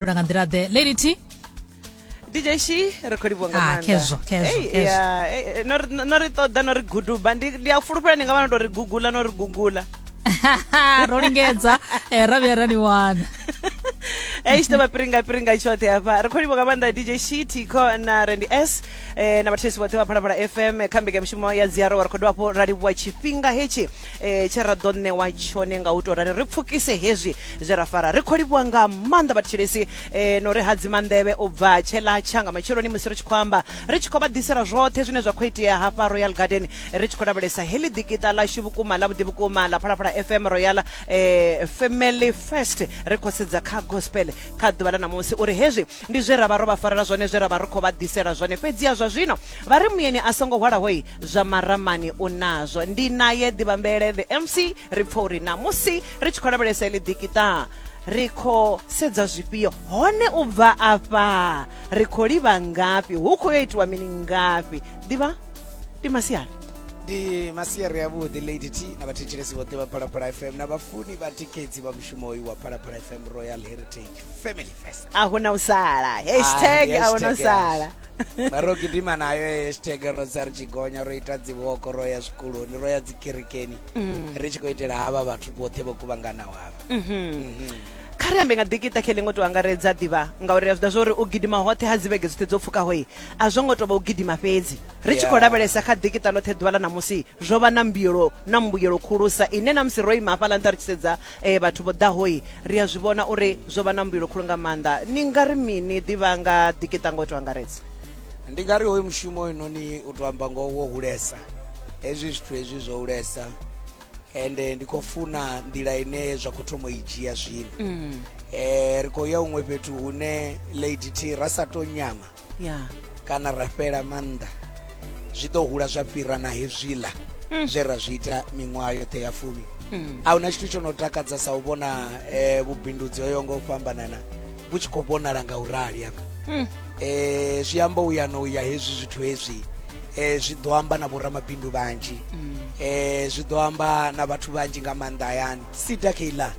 fhindula nga nḓila ḓe lady t dj shi ri khou livhuwa nga Ah, maanḓa. khezwo, khezwo, Ei, khezwo. ya, eh, eh, no ri- no ri ṱoḓa no ri guduba ndi ndi a fulufhela ni nga vha no tou ri gugula no ri gugula ro lingedza eh, ra vhuya ra ni wana ei tshi ḓovha piringa piringa tshoṱhe hafha ri khou livhuwa nga maanḓa dj shi tiko na rendi s eh, na vhathetshelesi vhoṱhe vha phalaphala fm kha mbekanyamushumo ya dziaro wa ri khou dovha hafhu ra livhuwa tshifhinga hetshi e, tshe ra ḓo ṋewa tshone nga u tou rali ri pfukise hezwi zwe ra fara ri khou livhuwa nga maanḓa vhathetshelesi e, no ri hadzima nḓevhe u bva tshela tsha nga matsheloni musi ri tshi khou amba ri tshi khou vha ḓisela zwoṱhe zwine zwa khou itea hafha royal garden ri tshi khou lavhelesa heḽi ḓikiṱa ḽashu vhukuma ḽa vhuḓi vhukuma ḽa phalaphala fm royal e, family first ri khou sedza kha gospel kha ḓuvha ḽa ṋamusi uri hezwi ndi zwe ra vha ro vha farela zwone zwe ra vha ri khou vha ḓisela zwone fhedziha zwa zwino vha ri muyeni a songo hwalahoi zwa maramani u nazwo ndi naye ḓivhambele the mc ri pfha uri namusi ri tshi khou lavhelesa ili dikitaa ri khou sedza zwifhio hone u bva afha ri khou livha ngafhi hu khou yo itiwa mini ngafhi ḓivha ndi masiari ndi masiari avhuḓi lady t na vhathetshelesi vhoṱhe vha phalaphala fm na vhafuni vha tikedzi vha mushumo uyu wa phalaphala fm royal heritage family fest a hu na u sala hashtag a hu na u sala ro gidima nayo hashtag ro tsa ri tshi gonya ro ita dziwoko ro ya zwikoloni ro ya dzikerekeni mm. ri tshi khou itela havha vhathu vhoṱhe vho kuvhanganaho havha mhm. mhm. kha ri ambe nga ḓikita khe ḽiṅwe to angaredza ḓivha ngauri a zwi ḓa zwa uri u gidima hoṱhe ha dzivhege dzoṱhe dzo pfukaho i a zwo ngo tou vha u gidima fhedzi ri tshi khou lavhelesa kha ḓikita ḽoṱhe ḓuvha ḽa ṋamusi zwo vha na mbuyelo na mbuyelo khulusa ine na musi ro ima hafhaḽa nṱha ri tshi sedza Ee vhathu vho ḓaho-i, ri a zwi vhona uri zwo vha na mbuyelo khulu nga maanḓa. Ni nga ri mini? Ḓi vha nga ḓikiṱa nga u tou angaredza. Ndi nga ri hoyu mushumo hoyunoni u tou amba ngoho wo hulesa, hezwi zwithu hezwi zwo hulesa ende ndi khou funa nḓila ine zwa khou thoma u i dzhia zwino. Um ri khou ya huṅwe fhethu hune Lady T ra sa tou nyama ya kana ra fhela maanḓa zwi ḓo hula zwa fhira na hezwiḽa mm. zwe ra zwi ita miṅwaha yoṱhe ya fumi mm. a hu na tshithu tsho no takadza sa u vhona um vhubindudzi hoyo nga u fhambanana vhu tshi khou vhonala nga u rali hafha um zwi amba u ya no ya hezwi zwithu hezwi um zwi ḓo amba na vhoramabindu vhanzhi um zwi ḓo amba na vhathu vhanzhi nga maanḓa hayani sida keiḽa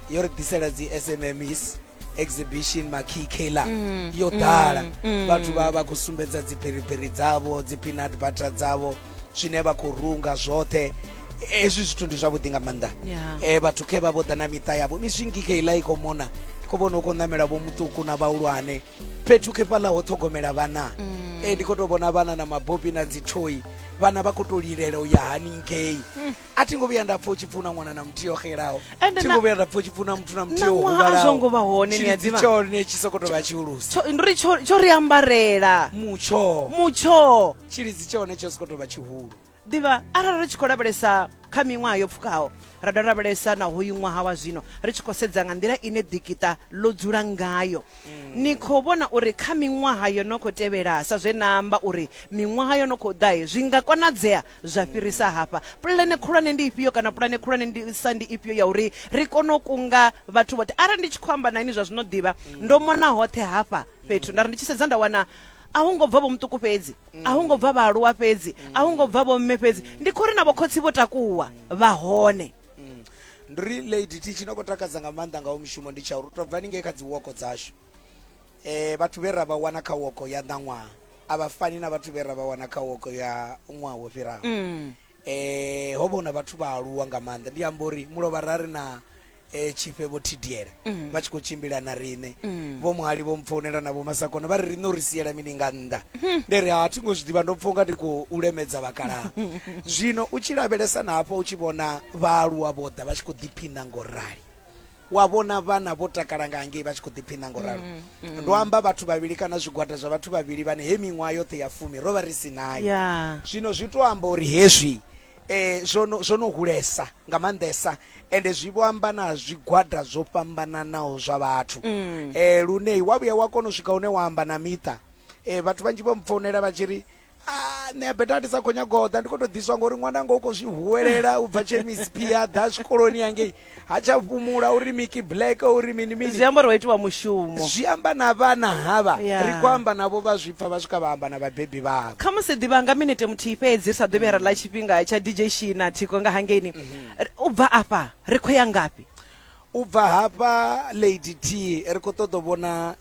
yo ri ḓisela dzi sms exhibition makhikheila mm, yo ḓala mm, mm. vhathu vha vha khou sumbedza dzipheriperi dzavho dzipinat butter dzavho zwine vha khou runga zwoṱhe hezwi zwithu ndi zwavhuḓi nga maanḓa yeah. e, vhathu khe vha vho ḓa na miṱa yavho miswi ngikheila i khou mona khou vhona u khou ṋamela vho muṱuku na vhahulwane fhethu khe fhaḽa ho ṱhogomela vhana mm. e, ndi khou tou vhona vhana na mabopi na dzithoi vhana vha khou tou lilela u ya haningei mm. a thi ngo vhuya nda pfa u tshi pfuna ṅwana na muthihi o xelaho thi ngo vhuya nda pfa u tshi pfuna muthu na muthihi o huvhalaozongo vha hone ni aḓivha tshone tshi soko tovha tshihulusa ndi ri tsho ri ambarela mutsho mutsho tshilidzi tshone tsho soko tovha tshihulu ḓivha arali ri tshi khou lavhelesa kha miṅwaha yo pfukaho ra dovha lavhelesa na hoyu ṅwaha wa zwino ri tshi khou sedza nga nḓila ine ḓikita ḽo dzula ngayo mm. ni khou vhona uri kha miṅwaha yo no khou tevhela sa zwe na amba uri miṅwaha yo no khou ḓae zwi nga konadzea zwa fhirisa hafha pulane khulwane ndi ifhio kana pulane khulwane ndi sa ndi ifhio ya uri ri kone u kunga vhathu vhoṱhe arali ndi tshi khou amba na ini zwa zwino ḓivha ndo mona hoṱhe hafha fhethu nda ri ndi tshi sedza nda wana a hu ngo bva vho muṱuku fhedzi a hu ngo bva vhaaluwa fhedzi a hu ngo bva vho mme fhedzi ndi khou ri na vhokhotsi vho takuwa vha hone ndi ri lady ti tshi no khou takadza nga maanḓa ngawo mushumo ndi tsha uri u tou bva ni ngei kha dzi woko dzashu E, vhathu vhe ra vha wana kha woko ya ṋaṅwaha a vha fani na vhathu vhe ra vha wana kha woko ya ṅwaha wo fhiraho. Mm. E, ho vha hu na vhathu vha aluwa nga maanḓa, ndi amba uri mulovha ra ri na e, tshifhe vho thidiela mm. vha tshi khou tshimbila na riṋe mm. vho muhali vho mpfounela na vho masakona vha ri riṋe uri siela mini nga nnḓa hmm. ndi ri ha thi ngo zwi ḓivha ndo pfha unga ndi khou lemedza vhakalaha zwino u tshi lavhelesa na hafho u tshi vhona vhaaluwa vho ḓa vha tshi khou ḓiphina ngo rali Wa vhona vhana vho takala nga hangei vha tshi khou ḓiphiṋa ngo ralo. Mm, mm. Ndo amba vhathu vhavhili kana zwigwada zwa vhathu vhavhili vhane he miṅwaha yoṱhe ya fumi ro vha ri si nayo. Yeah. Zwino zwi tou amba uri hezwi eh zwo no zwo no hulesa nga maanḓesa ende zwi vho amba na zwigwada zwo fhambananaho zwa vhathu eh lune wa vhuya wa kona u swika hune wa amba na miṱa eh vhathu vhanzhi vho mpfounela vha tshi ri Ah, nṋe beta ndi sa khou nyaga u ḓa ndi khou tou ḓiswa ngori ṅwana nga u khou zwi huwelela u bva chemisp ya ḓa zwikoloni yangei ha tsha fhumula uri miki black uri mini mini zwi amba uri wa itiwa mushumo zwi amba na vhana havha yeah. ri khou amba navho vha zwi pfa vha swika vha amba na vhabebi vhavho kha musi ḓivha nga minete muthihi fhedzi ri sa ḓo vhuya ra ḽa tshifhinga tsha dj shina thiko nga hangeini mm -hmm. u bva afha ri khou ya ngafhi u bva hafha lady t ri khou ṱoḓa vhona